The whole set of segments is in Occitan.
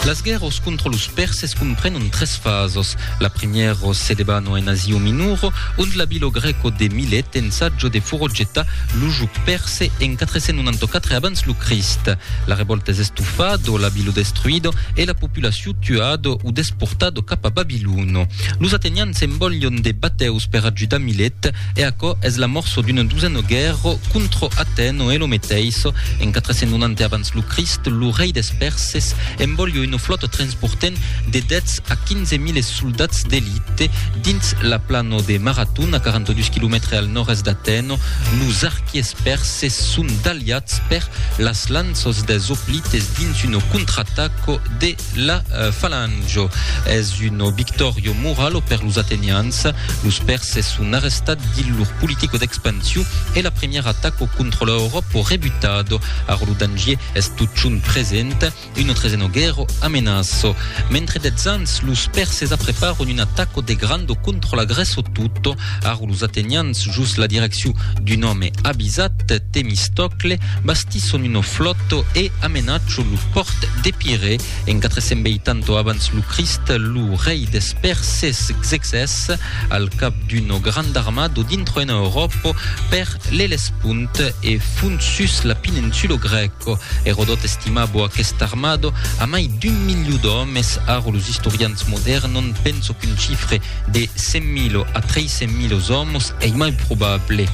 Las guèrros contra los Perses comprenon tres fasos. La primièro se debano en Asio Minoro, ont l'abilo grèco de Milet ensajo de forogetar lo jog perse en 494 abans lo Crist. La revòlta es estofado, l'abilo destruido e la populacion tuado o desportado cap a Babilono. Los atenians envòlion de batèus per ajudar Milet, E aquò es l'amorço d'un duseno guèrro contro Atèno e lo meteissò, en 490 abans lo Crist, lo rei des Pèrses enbolhio una flòta transportent de 10 a 15 miles soldats d'elite dins la plano de Marathon, a 42 quilomètres al nòrd-èst d'Atèno. Los arquiers pèrses son daliats per las lanças des Hoplites dins una contrataco de la Falange. Es un victòrio moralo per los Atenians. Los Pèrses son arrestats dins lor politica d'expansion e la primièra ataca contra la Euròpa o rebutada. Ara lo danger es totjorn present, una tresena guèrra amenaça. Mentre dètz ans, los Pèrses apreparan una ataca de granda contra la Grèça tota. Ara los Atenians, jos la direccion d'un òme avisat, Temistocle, bastisson una flòta e amenachan lo pòrt d'Epirè. En 480 abans lo Crist, lo rei des Pèrses Xerxès, al cap d'una granda armada, dintroena Euròpa per l'Ellespont e font sus la peninsula grèca. Erodòt estimava aquesta armada a mai d'un miliu d'òmes, ara los istorians modèrns n'an penso qu'un chifre de 100.000 a 300.000 òmes ei mai probable.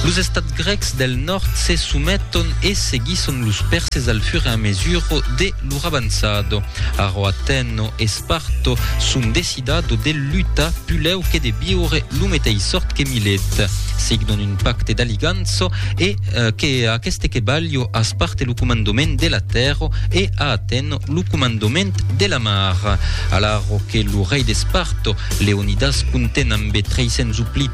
Los estats Grècs del nòrd se someton e seguisson los pèrses al fur e a mesura de lor avançada. Ara Atèna e Sparta son decidada de lutar pulèu que de viure lo meteis sòrt que Milet. Signon un pacte d'aligança e que a aqueste que balha a Sparta lo comandament de la tèrra e a Atèna lo comandament de la mar. Alara que lo rei de Sparta, Leonidas conten ambe 300 oplits,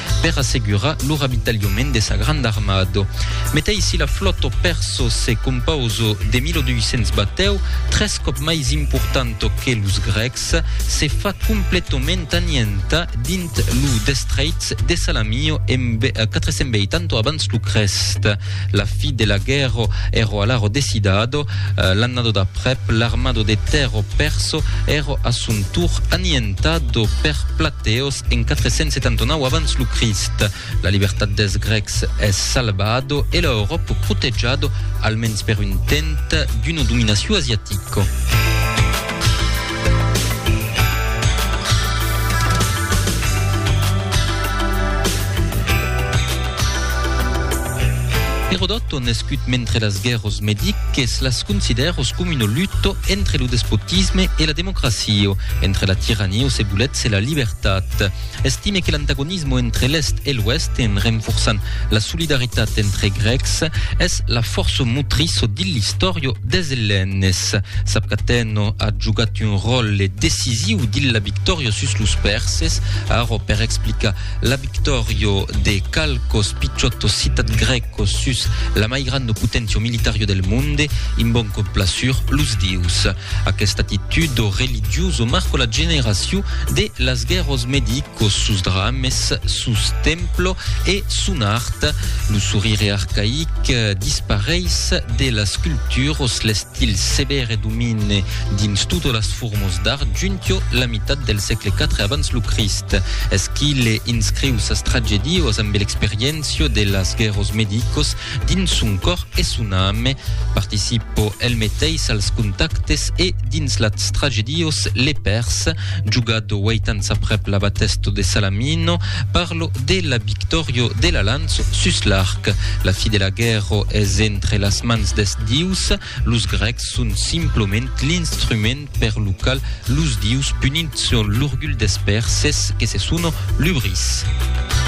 per assegurar lo ravitalhament de sa granda armada. Meteis si la flòta persa se compausa de 1.200 batèu, tres còp mai importanta que los grècs, se fa completament anientar dins lo destrèits de Salamio en 480 abans lo Crèst. La fi de la guèrra èra alara decidada, l'annada d'aprèp l'armada de tèrra persa èra a son tour anientada per Plateos, En 479 abans lo Crist, la libertat dels Grècs es salvado e l'Euròp protejado, almens per un temps, d'una dominacion asiatica. Herodoto nascut mentre las guerras mediques las considèros com una luta entre lo despotisme e la democracia, entre la tirania o se volet se la libertat. Estime que l'antagonisme entre l'Èst e l'Ouèst, en renforçant la solidaritat entre Grècs, es la fòrça motriço dins l'istòria des Ellènes. Sap qu'Atèno a jogat un ròtle decisiu dins la victòria sus los Pèrses. Ara, per explicar la victòria de qualques pichòtos citats grècs, Quò sus la mai granda potencia militaria del monde, in bon complasur los dius. Aquesta actitud o religius o marco la generaciu de las guerros medi quò sus drames, sus templo e son art. Lo sorire arcaic dispareis de las culturos, l'estil severe domine dins totas las formos d'art juntiò la mitat del sègle 4 abans lo Crist. Eschile inscriu sas tragedios ambe l'experiéncia, Cio de las guerros medicos dins son còr e son ame. Participo el meteis als contactes e dins las tragedios le pers. Jugado uèit ans aprèp la batesto de Salamino, parlo de la victòrio de la lanço sus l'arc. La fi de la guerro es entre las mans des dius. Los grècs son simploment l'instrument per lo qual los dius punitson l'orgulh des perses que se sono lubris.